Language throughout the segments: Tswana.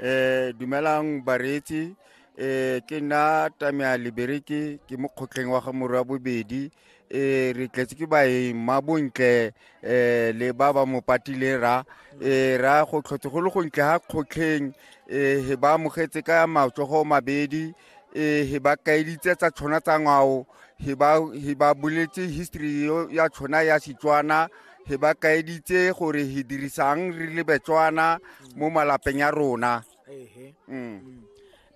Eh, dumelang bareetsi eh, ke nna tamea libereke ke mo kgotleng wa ga morwa bobedi eh, re tletse ke baeng ma bontle eh, le ba ba mo patileng ra eh, ra go tlhotse go le gontle ga kgotlheng eh, he ba amogetse ka matsogo mabedi ee he ba kaeditse tsa tshwana tsa ngwao he ba boletse history ya tshwana ya setswana he ba kaeditse gore he dirisang re le betswana mo malapeng ya rona mm.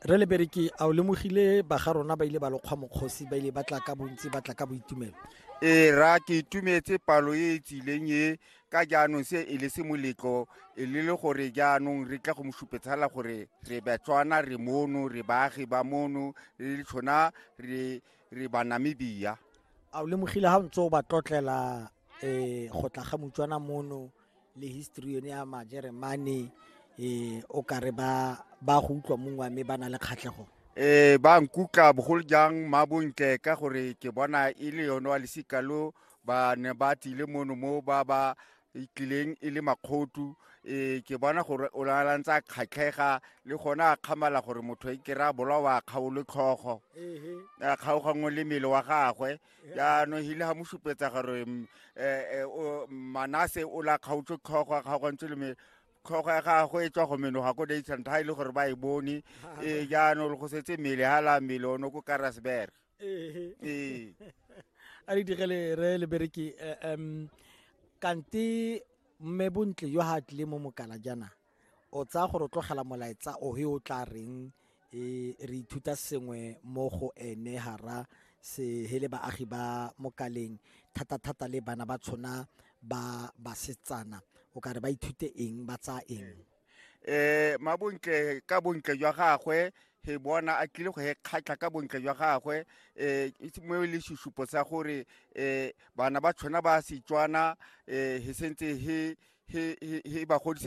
re le bereke a o lemogile ba ga rona ba ile ba lokgwa mokgosi ba ile ba tla ka bontsi ba tla ka boitumelo ee ra ke itumetse palo e e tsileng e ka jaanong se e le se moletlo e le le gore jaanong re tla go mo supetsala gore re batswana re mono re baagi ba mono re le tshona re re banamibia a o lemogile ga o ntse o ba tlotlela um go tla ga motswana mono le history yone ya majeremane um o ka re ba ba go utlwa mongwe mme ba na le kgatlhego um ba nkutla bogolo jang mabontle ka gore ke bona e le yone wa lesika lo ba ne ba tlile mono mo ba ba tlileng e le makgotu um ke bona gore o lalantse a kgatlhega le gone a kgamala gore motho e kry-a bolawa a kgaolo tlhogo a kgaogangwe le mmele wa gagwe jaanong hile ga mo supetsa gore um manase o la kgaotse tlhogo a kgaogantse le mmele tlhogo ya gagwe e tswa go menoga ko daysant ga e le gore ba e bone ee jaanong go setse mmele ga la mmele o ne ko karasberg ee ee a re digele re le bereki eh, em kante mme bontle yo ha tlile mo mokala jana o tsaya gore o tlogela molaetsa o he o tla reng e re ithuta sengwe mo go ene hara se hele baagi ba mokaleng thata thata le bana ba tshona ba basetsana o ka re ba ithute eng ba tsaya eng eh mabontle ka bontle jwa gagwe he bona a tlile go he kgatlha ka bontle jwa gagwe eh itse mo le susupo sa gore eh bana ba tshwana ba setswana eh he sentse he he he ba godise